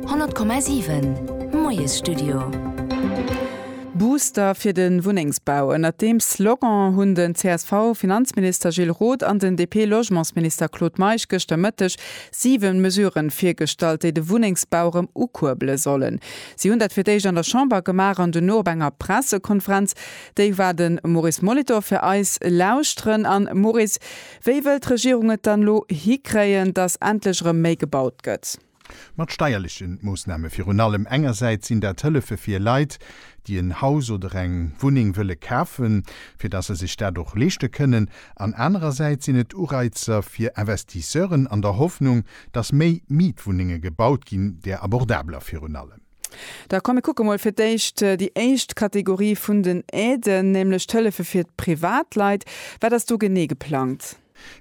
100,7 Moiesstudio. Booster fir de Wunnengsbau, Ënnert deem Slogan hunn den CSV-Finanzminister Gilles Roth an den DP-Logementsminister Claude Meisch gëschter Mëtteg siwe Mesurë virgestallt, déi de Wunnengsbau erëm ukuerbele sollen. Si hunn dat fir d'éischt an der Chamber gemaach an duerno op enger Pressekonferenz. Déi war de Maurice Molitor fir eis lauschteren. A Maurice, Wéi wëll d'Regierung et dann elo hikréien, datt endlech erëm méi gebaut gëtt? Mat steierleche Moossname virun allem. Engersäits sinn dat Hëllefe fir Leit, déi en Haus oder eng Wunneng wëlle kafen, fir datt se sech dat och leeschte kënnen. An anerersäits sinn et Ureizer fir Investisseuren an der Hoffnung, datt méi Mietwunnenge gebaut ginn, där abordabler virun allem. Da komm mir kucke mol fir d'éischt déi éischt Kategorie vun den Aiden, nämlech d'Hëllefe fir d'Privatleit. Wat ass do genee geplangt?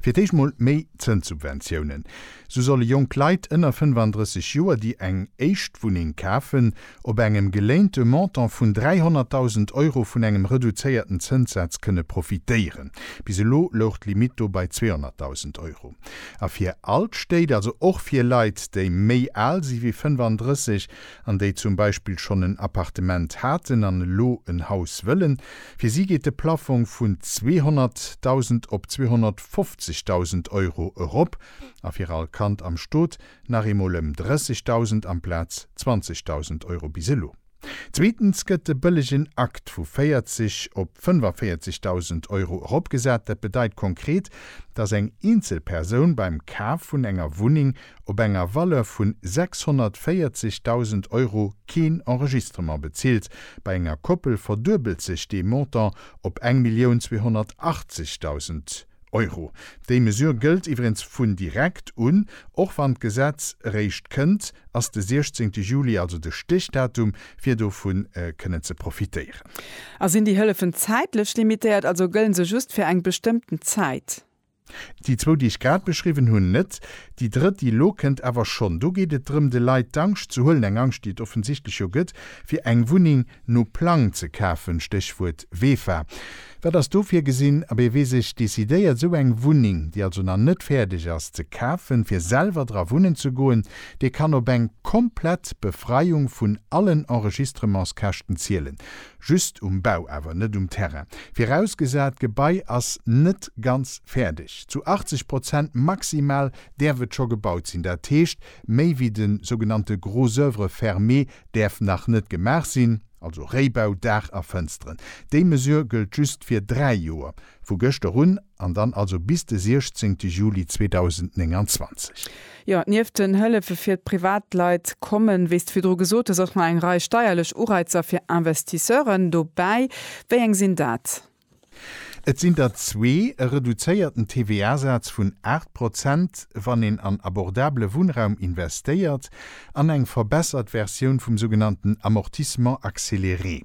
Fir d'éischt mol méi Zënssubventiounen. Sou solle jonk Leit ënner 35 Joer, déi eng éischt Wunneng kafen, op engem geléinte Montant vun 300.000 Euro vun engem reduzéierten Zënssaz kënne profitéieren. Bis elo louch d'Limitt do bei 200.000 Euro. A fir all d'Stéit, also och fir Leit, déi méi al si wéi 35 an déi zum Beispill schonn en Appartement haten an elo en Haus wëllen, fir si geet de Plaffong vun 200.000 op 250.000 Euro erop a fir all Kand am Stot nach eemol ëm 30.000 amplaz 20.000 Euro bis elo. Zweetens gëtt de bëllegen Akt vu 40 op 45.000 Euro eropgesat. Dat bedeit konkret, dass eng eenzel Persoun beim Kaf vun enger Wunneng op enger Valeur vu 640.000 Euro keen Enregistrement bezilt. Bei enger Koppel verduebelt sech dee Montant op eng Millioun 280.000. Euro. Déi Mesure gëllt iwwerens vun direkt un. Och wann d'Gesetz eréischt kënnt, ass de 16 Juli also de Stichdatum, fir dovu kënnen ze profitéieren. A sinn déi Hëllefen zäitlech limitéiert, also gëllen se just fir eng bestëmmten Zäit? Déi zwou, déi ech grad beschriwwen hunn, net. Déi drëtt, déi elo kënnt, awer schonn. Do geet et drëm, de Leit d'Angscht ze huelen, eng Angscht, déi et offensichtlech jo gëtt, fir eng Wunneng no Plang ze kafen, Stéchwuert WEFA. Wat ass do virgesinn? A wee sech decidéiert, esou eng Wunneng, déi also nach net fäerdeg ass, ze kafen, fir selwer dra wunnen ze goen, dee kann op eng komplett Befreiung vun allen Enregistrementskäschten zielen. Just um Bau awer, net um Terrain. Virausgesat, d'Gebai ass net ganz fäerdeg. Zu 80 Prozent maximal däerf et scho gebaut sinn. Dat heescht, méi wéi de sougenannte gros œuvres fermées däerf nach net gemaach sinn. also Réibau, Daach a Fënsteren. Déi Mesure gëllt just fir dräi Joer, vu gëschter un, an dann also bis de 16 Juli 2029. Jo, nieft den Hëllefe fir d'Privatleit kommen, wéi s de virdru gesot hues, och nach eng Rei steierlech Ureizer fir Investisseuren dobäi. Wéi eng sinn dat? Et sinn der zwee, e reduzéierten TVA-Saz vun 8 Prozent, wann een an abordabele Wunnraum investéiert, an eng verbessert Versioun vum sougenannten Amortissement accéléré.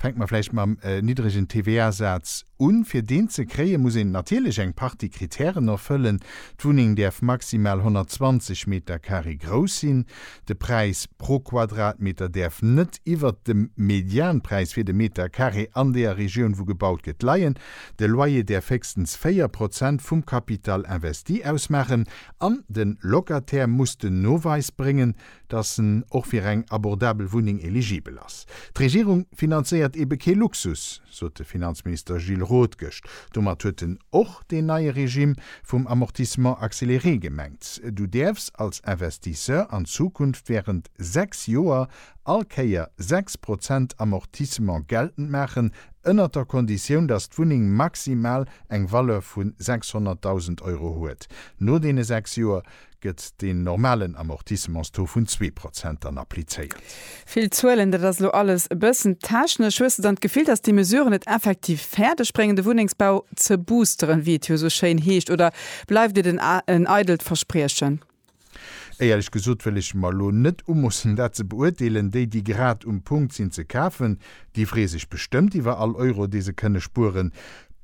Fänke mer vläicht mam niddregen TVA-Saz un. Fir deen ze kréien, muss een natierlech eng Partie Kritären erfëllen. D'Wunneng däerf maximal 120 Metercarré grouss sinn. De Präis pro Quadratmeter däerf net iwwert dem Medianpräis fir de Meter Carré an deer Regioun wou gebaut gëtt leien. De Loyer däerf héchstens 4 Prozent vum Capital investi ausmaachen an de Locataire muss den Noweis bréngen, datt en och fir eng abordabel Wunneng eligibel ass. D'Regierung finanzéiert eebe kee Luxus. sot de Finanzminister Gilles Roth gëscht. Domat huet en och deen neie Regime vum Amortissement accéléré gemengt. Du däerfs als Investisseur an Zukunft wärend sechs Joer all Kéier sechs Prozent Amortissement geltend maachen, ënnert der Konditioun, dass d'Wunneng maximal eng Valeur vu 600.000 Euro huet. No deene sechs Joer gëtt deen normalen Amortissements-Taux vun zwee Prozent dann applizéiert. Vill Zuelen, dat ass elo alles e bëssen technesch. Hues de dann d'Gefill, datt déi Mesuren et effektiv fäerdeg bréngen, de Wunnengsbau ze boosteren, wéi et jo esou schéin heescht, oder bleift et en eidelt Verspriechen? Éierlech gesot wëll ech mer elo net umoossen, dat ze beurteelen. Déi, déi grad um Punkt sinn ze kafen, Déi free sech bestëmmt iwwer all Euro, dee se kënne spueren.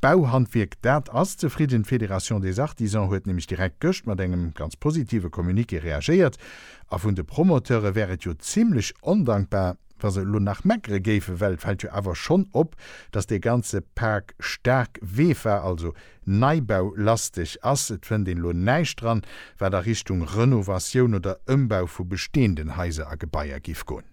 D'Bauhandwierk, dat ass zefridden. D'Fédération des Artisans huet nämlech direkt gëscht mat engem ganz positive Communiqué reagéiert. A vun de Promoteure wär et jo zimlech ondankbar, wa se elo nach meckere géifen, well et fält jo awer schonn op, dass dee ganze Pak staark WEFA, also Neibau, lasteg ass. Et fënnt een elo näischt dran, wat a Richtung Renovatioun oder Ëmbau vu besteenden Haiser a Gebaier giff goen.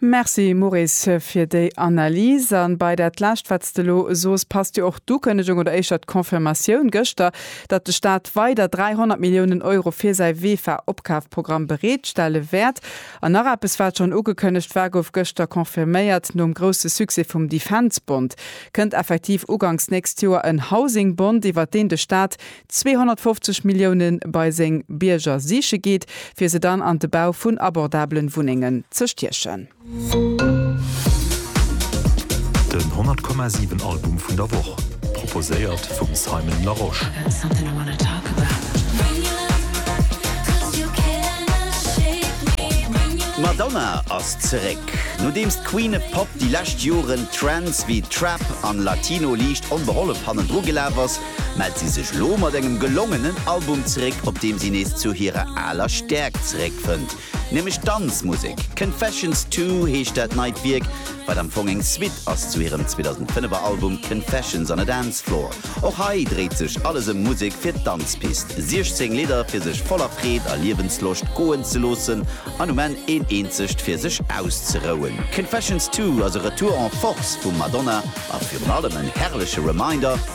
Merci Maurice fir déi Analys. An bei dat lescht wat s de elo soos passt jo och d'Ukënnegung oder éischter d'Confirmatioun gëschter, datt de Staat weider 300 Milliounen Euro fir säi Vefa-Opkafprogramm bereet stelle wäert. An nach eppes wat schonn ugekënnegt war, gouf gëschter confirméiert, Nom grousse Succès vum Defence-Bond kënnt effektiv ugangs nächst Joer en Housing-Bond, iwwert deen de Staat 250 Milliounen bei seng Bierger siiche geet, fir se dann an de Bau vun abordabelen Wunnengen ze stiechen. Den 100 Komma 7 Album vun der Woch, proposéiert vum Simon Larosche. D'Madonna ass zeréck. Nodeems d'Queen of Pop déi lescht Joren Trends wéi Trap an Latino liicht onbehollef hannendru gelaf ass, mellt si sech elo mat engem gelongenen Album zeréck, op deem si nees zu hirer aler Stäerkt zeréckfënnt, nämlech d'Danzmusek. Confessions Two heescht dat neit Wierk, wat am Fong eng Suite ass zu hirem 2005er Album Confessions on a Dance Floor. Och hei dréit sech alles ëm Musek fir d'Danzpist, 16 Lidder fir sech voller Freed a Liewensloscht goen ze loossen an um Enn een eenzegt fir sech auszerouen. Confessions Two ass e Retour en Force vum Madonna a virun allem en herrleche Reminder,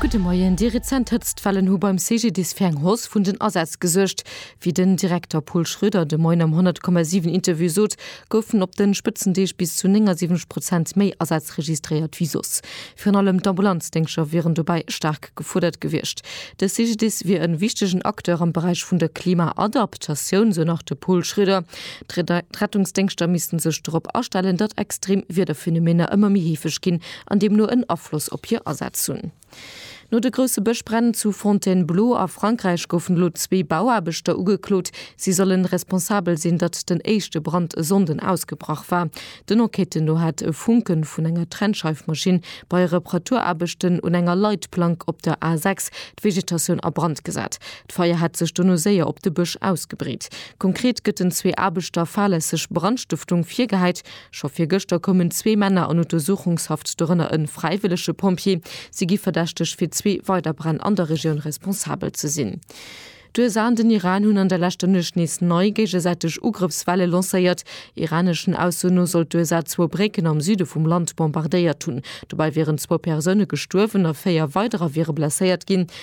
Gudde Moien, Déi rezent Hëtztwellen hu beim CGDIS fir eng Hausse vun den Asätz gesuergt. Wéi den Direkter Pol Schroeder de Moien am 100,7 Interview sot, goufen op de Spëtzendeeg bis zu 79 Prozent méi Asätz registréiert wéi soss. Virun allem d'Ambulanzdéngscher wieren dobäi staark gefuerdert gewiescht. De CGDIS wier e wichtegen Acteur am Beräich vun der Klima-Adap tatioun, sou nach de Pol Schroeder. D'Rettungsdéngschter missten sech dorop astellen, datt extrem Wiederphänomener ëmmer méi heefeg ginn an deemno en Afloss op hir Asätz hunn. No de grousse Bëschbränn zu Fontainebleau a Frankräich goufen elo zwee Bauaarbechter ugeklot. Si sollen responsabel sinn, datt den éischte Brand e Sonnden ausgebrach war. Den Enquêten no hat e Funke vun enger Trennscheifmaschinn bei Reparaturaarbechten un enger Leitplank op der A 6 d'Vegetatioun a Brand gesat. D'Feier hätt sech dono séier op de Bësch ausgebreet. Konkret gëtt den zwee Aarbechter fahrlässeg Brandstëftung virgehäit. Scho virgëschter koumen zwee Männer an Untersuchungshaft, dorënner e fräiwëllege Pompjee. Si gi verdächteg, fir zwee weider Bränn an der Regioun responsabel ze sinn. D'USA an den Iran hunn an der leschter Nuecht nees nei géigesäiteg Ugrëffswelle lancéiert. Iraneschen Aussoen no soll d'USA zwou Brécken am Süde vum Land bombardéiert hunn. Dobäi wieren zwou Persoune gestuerwen a véier weiderer wiere blesséiert ginn.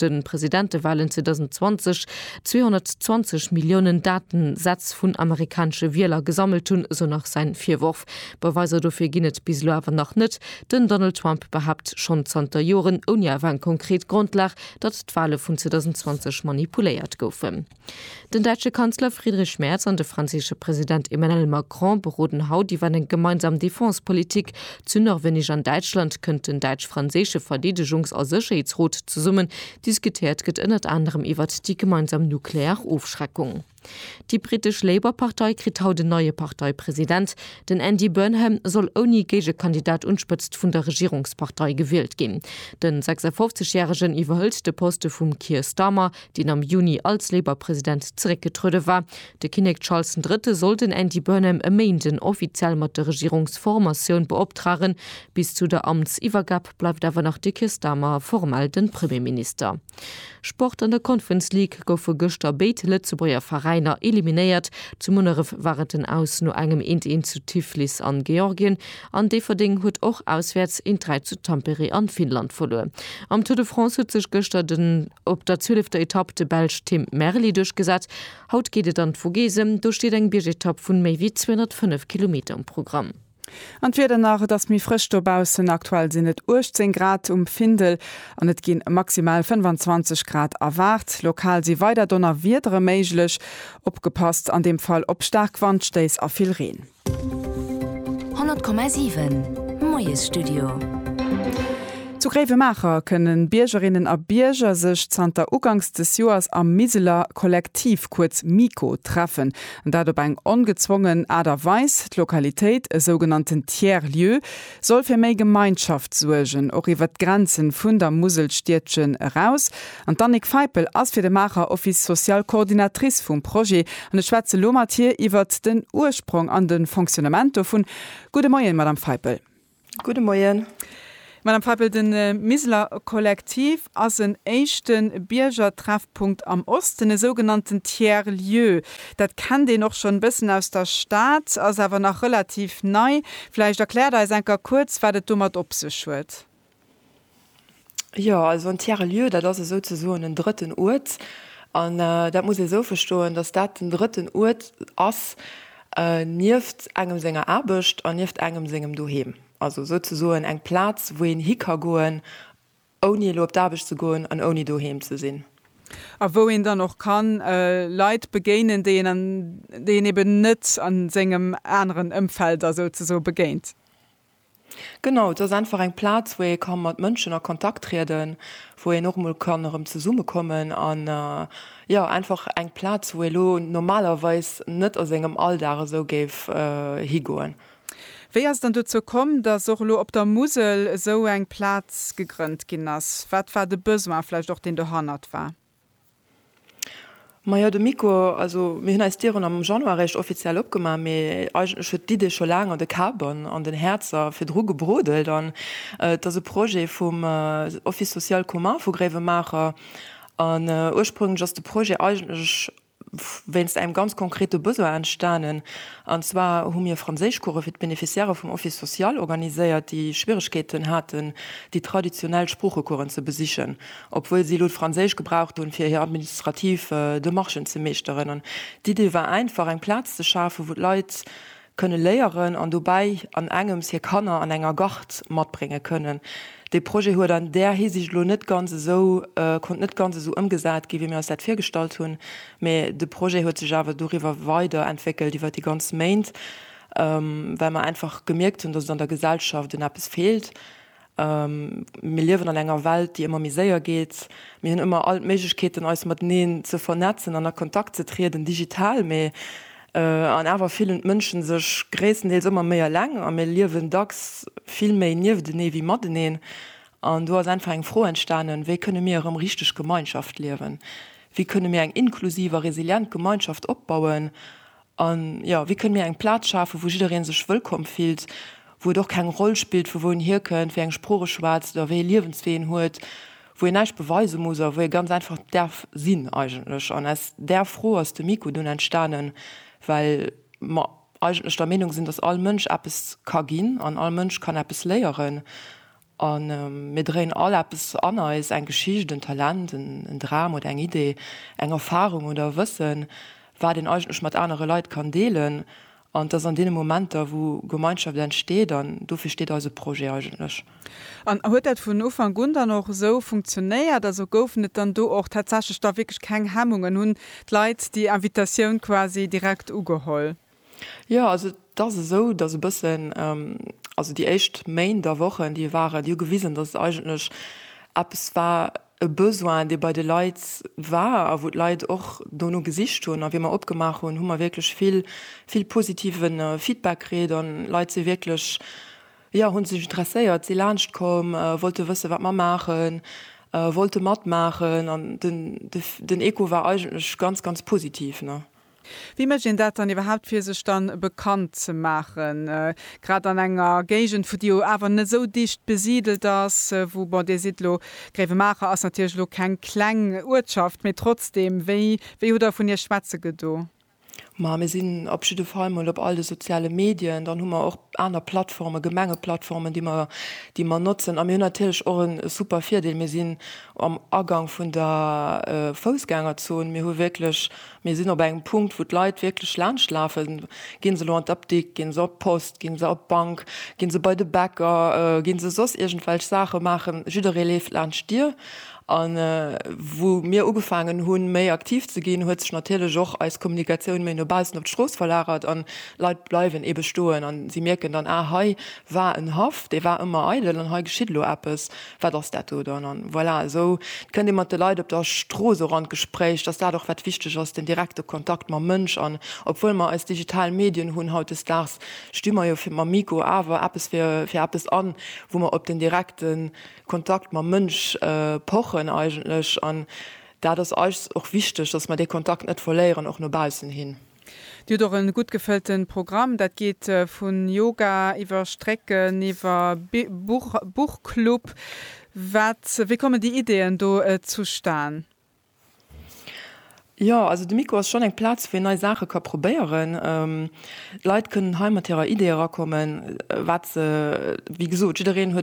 de Presidentewalen 2020 220 Milliounen Datensätz vun amerikanesche Wieler gesammelt hunn, esou nach säin Virworf. Beweiser dofir ginn et bis elo awer nach net. Den Donald Trump behaapt schonn zanter Joren, ouni awer eng konkret Grondlag, datt d'Wale vun 2020 manipuléiert goufen. Den däitsche Kanzler Friedrich Merz an de franséische President Emmanuel Macron beroden haut iwwer eng gemeinsam Defense-Politik. Zu Norwenneg an Däitschland kënnt den däitsch-franséische Verdeedegungs a Sécherheetsrot zesummen. Diskutéiert gëtt ënnert anerem iwwert déi gemeinsam nuklear Ofschreckung. Déi brittesch Labour-Partei kritt haut en neie Parteipresident. Den Andy Burnham soll ouni Géigekandidat un d'Spëtzt vun der Regierungspartei gewielt ginn. Den 56 Järegen iwwerhëlt de Poste vum Keir Starmer. deen am Juni als Labour-President zeréckgetruede war. De Kinnek Charles den Drëtte soll den Andy Burnham e Méinden offiziell mat der Regierungsformatioun beoptragen. Bis zu der Amtsiwwergab bleift awer nach de Keir Starmer formell de Premierminister. Sport An der Conference League goufe gëschter béid Lëtzebuerger Veräiner eliminéiert. Zu Munneref war et den Aus no engem 1, 1 zu Tiflis an Georgien an Déifferdeng huet och auswäerts 1, 3 zu Tampere an Finnland verluer. Am Tour de France huet sech gëschter den. Op der zwielefter Etapp de Belsch Tim Merli duerchgesat. Haut geet et an d'Vogesen, do steet eng Biergetapp vun méi wéi 205 Kilometer um Programm. An d'Wieder nach, Et ass méi frësch dobaussen, aktuell sinn et 18 Grad um Findel an et gi maximal 25 Grad erwaart. Lokal si weider Donnerwiedere méiglech, opgepasst an deem Fall op staark Wandstéiss a vill Reen. 100,7 Moiesstudio. Zu Gréiwemaacher kënnen Biergerinnen a Bierger sech zanter Uganks des Joers am Miseler Kollektiv, kuerz MiKo, treffen. An dat op eng ongezwongen Aart a Weis. D'Lokalitéit, e sougenannten Tiers Lieu, soll fir méi Gemeinschaft suergen, och iwwert d'Grenzen vun der Muselstiedchen eraus. An d'Annick Feipel ass fir de Maacher Office Social d'Coordinatrice vum Projet an ech schwätze lo mat hir iwwert den Ursprong an de Fonctionnement dovun. Gudde Moien, Madame Feipel. Gudde Moien. Madame Feipel, de Miseler Kollektiv ass en éischte Biergertreffpunkt am Osten, e sougenannten Tiers-lieu. Dat kennt een och schonn e bëssen aus der Stad, ass awer nach relativ nei. Vläicht erkläert eis enker kuerz, wat et domat op sech huet. Jo, also en Tiers-lieu, dat ass esou ze soen en drëtten Uert. An dat muss ee esou verstoen, datt dat den drëtten Uert ass nieft engem senger Aarbecht an nieft engem sengem Doheem. Also esou ze soen eng Plaz, wou een hi ka goen, ouni elo op d'Aarbecht ze goen an ouni doheem ze sinn. A wou een dann och ka Leit begéinen, déi een, déi een eben net a sengem aneren Ëmfeld da souzesoe begéint. Genau, et ass einfach eng Plaz, wou ee ka mat Mënschen a Kontakt trieden, wou een och mol kann erëm zesummekommen an jo einfach eng Plaz, wou ee lo normalerweis net a sengem Alldag esou géif higoen. Wéi ass et dann dozou komm, dass och elo op der Musel esou eng Plaz gegrënnt ginn ass? Wat war de Besoin vläicht och, deen dohannert war? Majo de Miko, also mir hunn eis Dieren am Januar réischt offiziell opgemaach, mee eigentlech huet d'Idee scho laang an de Kabern an den Häerzer virdru gebrodelt. An et ass e Projet vum Office social commun vu Gréiwemaacher. An ursprénglech ass de Projet eigentlech wéinst engem ganz konkrete Besoin entstanen, an zwar hu mir Franséischcourse fir d'Beneficiairë vum Office social organiséiert, déi Schwieregkeeten haten, déi traditionell Sproochecoursen ze besichen, obwuel si elo d'Franséisch gebraucht hunn, fir hir administrativ Demarchen ze meeschteren. An d'Idee war einfach, eng Plaz ze schafen, wou d'Leit kënne léieren an dobäi an engems hir Kanner an enger Gard matbrénge kënnen. Dee Projet huet an där Hisiicht elo net ganz esou, konnt net ganz esou ëmgesat ginn, wéi mir eis dat virgestallt hunn, mee de Projet huet sech awer doriwwer weider entwéckelt, iwwer déi ganz Méint, well mer einfach gemierkt hunn, dass et an der Gesellschaft un eppes feelt Mir liewen an enger Welt, déi ëmmer méi séier geet. Mir hunn ëmmer all d'Méiglechkeeten, eis mateneen ze vernetzen an a Kontakt ze trieden, digital. Mee an awer fillen d'Mënschen sech gréisstendeels ëmmer méi eleng a mir liewen dacks vill méi nieftenee wéi mateneen. An do ass einfach eng Fro entstanen, Wéi kënne mir erëm richteg Gemeinschaft liewen? Wéi kënne mir eng inklusiv a resilient Gemeinschaft opbauen, A jo, wéi kënne mir eng Plaz schafen, wou jidderee sech wëllkomm fillt, wou et och keng Roll spillt, vu wou en hierkënnt, wéi eng Sprooch e schwätzt oder wéi ee Liewenswee en huet, wou een näischt beweise muss a wou ee ganz einfach däerf sinn eigentlech. An aus där Fro ass de Miko dunn entstanen, well mer eigentlech der Meenung sinn, dass all Mënsch eppes ka ginn an all Mënsch kann eppes léieren. A mir dréien all eppes an eis, eng Geschicht, en Talent, en Dram oder eng Idee, eng Erfarung oder e Wëssen, wat een eigentlech mat anere Leit kann deelen. An et ass an deene Momenter, wou Gemeinschaft entsteet. An dofir steet eise Projet eigentlech. An huet dat vun Ufank un dann och esou funktionéiert? Also goufen et dann do och tatsächlech da wierklech keng Hemmungen? Hunn d'Leit déi Invitatioun quasi direkt ugeholl? Jo, also et ass esou, dass e bëssen, also déi éischt Méint a Wochen, déi waren, déi hu gewisen, dass et eigentlech eppes war, e Besoin, dee bei de Leit war a wou d'Leit och dono gesicht hunn. A wéi mer opgemaach hunn, hu mer wierklech vill, vill positive Feedback kritt a Leit si wierklech, jo, hu sech interesséiert, si laanscht komm, wollte wëssen, wat mer maachen, wollte matmaachen. An den, den Echo war eigentlech ganz, ganz positiv, ne. Wéi mécht een dat dann iwwerhaapt fir sech dann bekannt ze maachen, grad an enger Géigend vu déi jo awer net esou dicht besidelt ass, wou, bon Dir sidd elo, Gréiwemaacher ass natierlech elo keng kleng Uertschaft, mee trotzdem, wéi wéi hutt Der vun Iech schwätze gedo? Ma mir sinn op jidde Fall mol op all de soziale Medien, dann hu mer och aner Plattformen, Gemengeplattformen, déi mer déi mer notzen a mir hunn natierlech och e super Virdeel, mir sinn am Agang vun der Foussgängerzon, mir hu wierklech Mir sinn op engem Punkt, wou d'Leit wierklech laanscht lafen. Gi se elo an d'Apdikt, gi se op d'Post, gi se op d'Bank, gi se bei de Bäcker, gi se soss iergendwelch Saache maachen, jidderee leeft laanscht d'Dier. A wou mir ugefaangen hunn, méi aktiv ze ginn, huet sech natierlech och eis Kommunikatioun méi no baussen op d'Strooss verlagert an d'Leit bleiwen eebe stoen. An si mierken dann, Ah, hei war en Haff, dee war ëmmer eidel an hei geschitt elo eppes. Wat ass dat do dann? An voilà, esou kënnt ee mat de Leit op der Strooss och an d'Gespréich, dass dat och wat wichteg ass, den direkte Kontakt mam Mënsch. An obwuel mer eis digital Medien hunn hautdesdaags, sti mer jo fir mam Mikro awer eppes fir fir eppes an, wou mer op den direkte Kontakt mam Mënsch pochen eigentlech. An dat ass eis och wichteg, dass mer dee Kontakt net verléieren, och no baussen hin. Dir hutt och e gutt gefëllte Programm. Dat geet vu Yoga iwwer Strécken, iwwer Buch, Buchclub. Wat, wéi kommen déi Ideeën do zustan? Jo, also de Miko ass schonn eng Plaz, wou een nei Saache ka probéieren. Leit kënnen hei mat hirer Idee erakommen, wat se, wéi gesot, jiddereen huet.